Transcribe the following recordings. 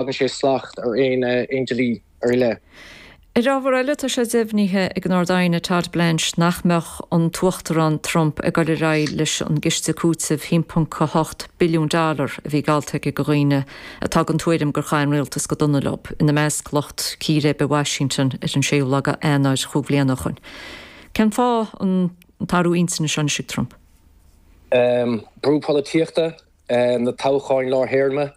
dtagann sé slacht ar aon dlí ar leith. Ar ábhar eile, tá sé deimhnithe ag an Ard-Aighne Todd Blanche nach mbeadh an tUachtarán Trump ag dul ar aghaidh leis an gciste cúitimh 1.8 billiún dollar a bhí geallta aige do dhaoine atá den tuairim gur chaith an rialtas go dona leob, ina measc lucht círéibe i Washington ar an 6ú lá d'Eanáir chúig bliana ó shin. Cén fáth an t-athrú intinne seo anois ag Trump? Brú polaitíochta, na toghcháin lár-théarma.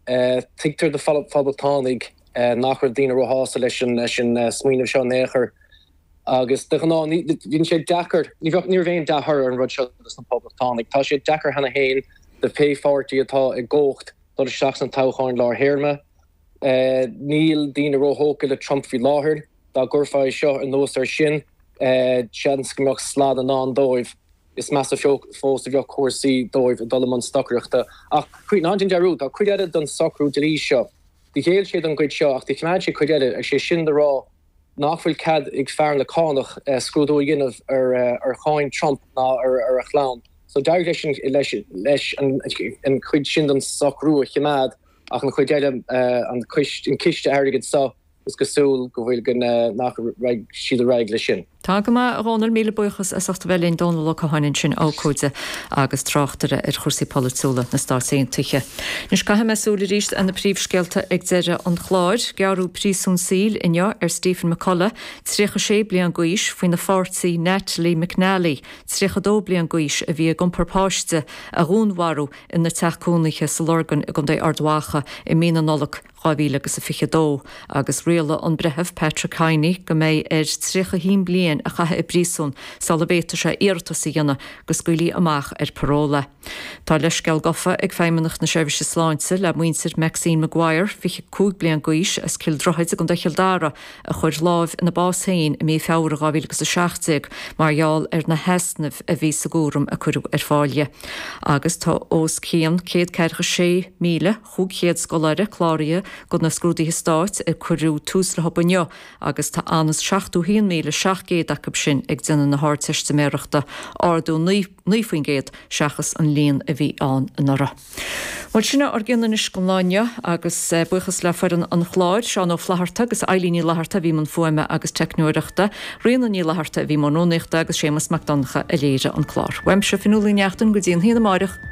Tuigeadh do Phoblachtánaigh nach raibh daoine róshásta leis an smaoineamh seo in aon chor agus de ghnáth tá sé deacair, ní raibh aon dea-thoradh ar an rud seo dos na Poblachtánaigh. Tá sé deacair cheana féin do pé pháirtí atá i gcumhacht dul isteach sna toghcháin lár théarma. Níl daoine róthógtha le Trump faoi láthair. Dá gcuirfeá é seo anuas air sin, seans go mbeadh slad i ndán dóibh. Is measa fós a bheadh cúrsaí dóibh ag dul i mbun stocaireachta. Ach ná déan dearúd, tá cuid eile den socrú dlí seo. Do ghéill sé don gcuid seo ach do chimeád sé cuid eile, is é sin le rá nach bhfuil cead ag fear na cánach scrúdú a dhéanamh ar cháin Trump ná ar a chlann. So d'éirigh leis an chuid sin den socrú a chimeád ach an chuid eile, an ciste airgid seo, Is cosúil go bhfuil go nach raghaidh siad ar aghaidh leis sin. Tá go maith, a Dhónaill, míle buíochas as ucht bheith linn. Dónal Ó Catháin ansin, abhcóide agus tráchtaire ar chúrsaí polaitiúla na Stát Aontaithe. Anois caithfidh mé súil arís ar na príomhscéalta ag deireadh an chláir. Gearradh príosún saoil inniu ar Stephen McCullagh, 36 bliain d'aois, faoina pháirtí Natalie McNally, 32 bliain d'aois, a bhí ag iompar páiste, a dhúnmharú ina teach cónaithe sa Lorgain i gContae Ard Mhacha i mí na Nollag. 2022, agus rialaigh an Breitheamh Patrick Kinney go mbeidh air 31 bliain a chaitheamh i bpríosún sula bhféadfaidh sé iarratas a dhéanamh go scaoilfí amach ar parúl é. Tá leithscéal gofa ag Feidhmeannacht na Seirbhíse Sláinte le muintir Maxine Maguire, 25 bliain d'aois, as Cill Droichid i gContae Chill Dara, a chuir lámh ina bás féin i mí Feabhra 2017 mar gheall ar na heasnaimh a bhí sa gcúram a cuireadh ar fáil di agus tá os cionn 146,000 500 scoláire cláraithe do na scrúduithe stáit ar ar cuireadh tús leob inniu agus tá anuas ar 71,700 acub sin ag déanamh na hArdteistiméireachta, ardú 9% seachas an líon a bhí ann anuraidh. Bhuel, sin é ár gcionn anois don lá inniu agus buíochas le foireann an chláir, Seán Ó Flatharta agus Eilín Ní Fhlatharta a bhí i mbun fuaime agus teicneoireachta, Ríona Ní Fhlatharta a bhí i mbun rúnaíochta agus Séamus Mac Donncha a léirigh an clár. Uaimse, Fionnuala Ní Neachtain, go dtí a haon amárach.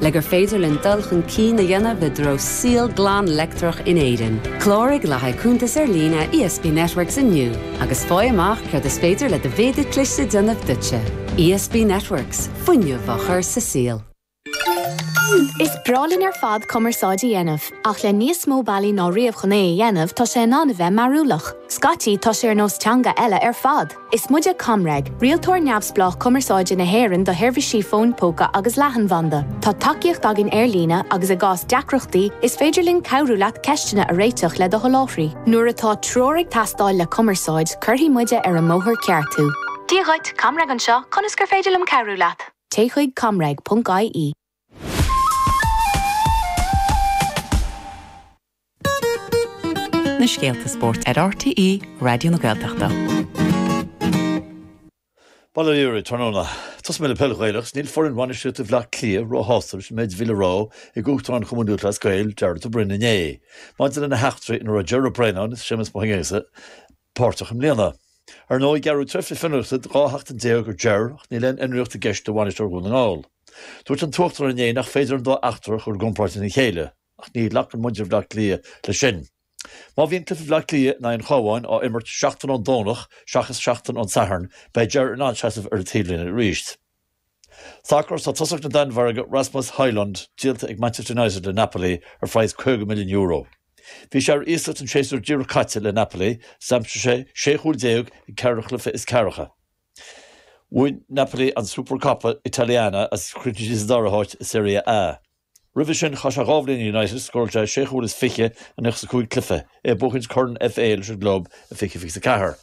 Le gur féidir linn dul chun cinn a dhéanamh i dtreo saol glan leictreach in Éirinn, cláraigh le haghaidh cuntas ar líne ESB Networks inniu agus faigh amach céard is féidir le do mhéadar cliste a dhéanamh duitse. ESB Networks, fuinneamh á chur sa saol. Is breá linn ar fad cumarsáid a dhéanamh, ach le níos mó bealaí ná riamh chun é a dhéanamh, tá sé in ann a bheith mearúlach. Scaití, tá sé ar nós teanga eile ar fad! Is muide ComReg, rialtóir neamhspleách cumarsáide na hÉireann do sheirbhísí fóin póca agus leathanbhanda. Tá tacaíocht againn ar líne agus i gcás deacrachtaí, is féidir linn cabhrú leat ceisteanna a réiteach le do sholáthraí. Nuair atá treoir ag teastáil le cumarsáid, cuirfidh muide ar an mbóthar ceart thú. Dia dhuit, ComReg anseo, conas gur féidir liom cabhrú leat? Téigh chuig comreg.ie. Na scéalta spóirt ar RTÉ Raidió na Gaeltachta. Bail ó Dhia oraibh tráthnóna. Tosóidh mé le peil Ghaelach is níl foireann bhainisteoireachta Bhaile Átha Cliath róshásta leis an méid a bhí le rá ag Uachtarán Chumann Lúthchleas Gael, Jarlath Burns inné. Maidir lena heachtraí ina raibh Ger Brennan is Séamus Mac Aonghusa, páirteach i mbliana. Ar ndóigh, gearradh tréimhse fionraíochta de 12 sheachtain ar Ger ach níl aon fhionraíocht i gceist do bhainisteoir Dhún na nGall. Dúirt an tUachtarán inné nach féidir an dá eachtra a chur i gcomparáid lena chéile ach ní ghlacann muintir Bhleá Cliath leis sin. Má bhíonn cluiche Bhleá Cliath in aghaidh an Chabháin á imirt seachtain ón Domhnach seachas seachtain ón Satharn, beidh Ger in ann seasamh ar an taobhlíne arís. Sacar tá tosaí na Danmhairge Rasmus Højlund díolta ag Manchester United le Napoli ar phraghas €50 milliún Bhí sé ar iasacht an séasúr díreach caite le Napoli agus d'aimsigh sé 16 chúl ag ceithre chluiche is ceathracha Bhain Napoli an Supercoppa Italiana agus chríochnaigh siad sa dara háit i Serie A Roimhe sin chaith sé dhá bhliain le United Scórail sé sé chúl is fiche i 95 cluiche, é ag buachaint Corn FA leis an gclub i 20, 24.